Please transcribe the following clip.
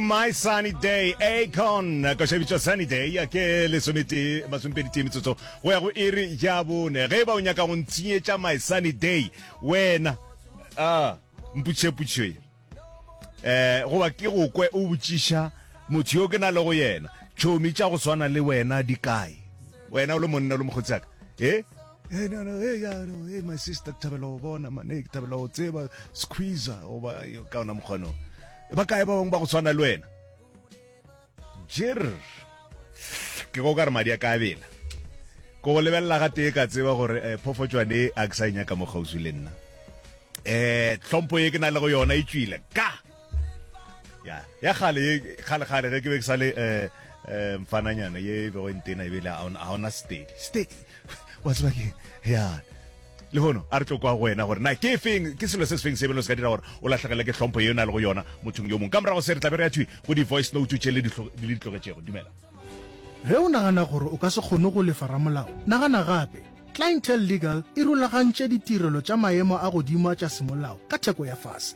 My Sunny Day, Akon, košabitšwa Sunny Day, ya ke lesometee, masompedi tee metsotso, go ya go iri ya bone. Ge e ba o nyaka go ntshenyetša My Sunny Day, wena, ah, mputšheputšhe, eh, goba ke go kwe o botšiša motho yo ke na le go yena, tšhomi tša go swana le wena di kae? Wena o le monna, o le mokgotsaka, eh? Hey, no, no, hey, yeah, no, hey, my sister ke thabela go bona mane ke thabela go tseba squeezer goba ka ona mokgwano ba kae ba bangwe ba go tshwana le wena jer ke go ka re madi a ka bela ko go lebelela ga tee ka tseba gore um eh, phofotswane a ke sa e nyaka mo kgauswi le nna um eh, tlhompho e ke na le go yona e tswile ka ya ya gale ye gale gale ge ke be ke sale eh eh mfananyana ye e bego e ntena ebile ga ona steady steady wa tseba ke ya le hono a re tlo kwa go wena gore na ke feng ke selo se se feng se belo se ka dira gore o latlhegele ke tlhompho ye o na le go yona mothong yo mongwe ka morago se re tlabe re ya thwi go di-voice note tše le di tlogetšego dumela ge o nagana gore o ka se kgone go lefa ramolao nagana gape clientele legal e rulagantše ditirelo tša maemo a godimo a tša semolao ka theko ya fase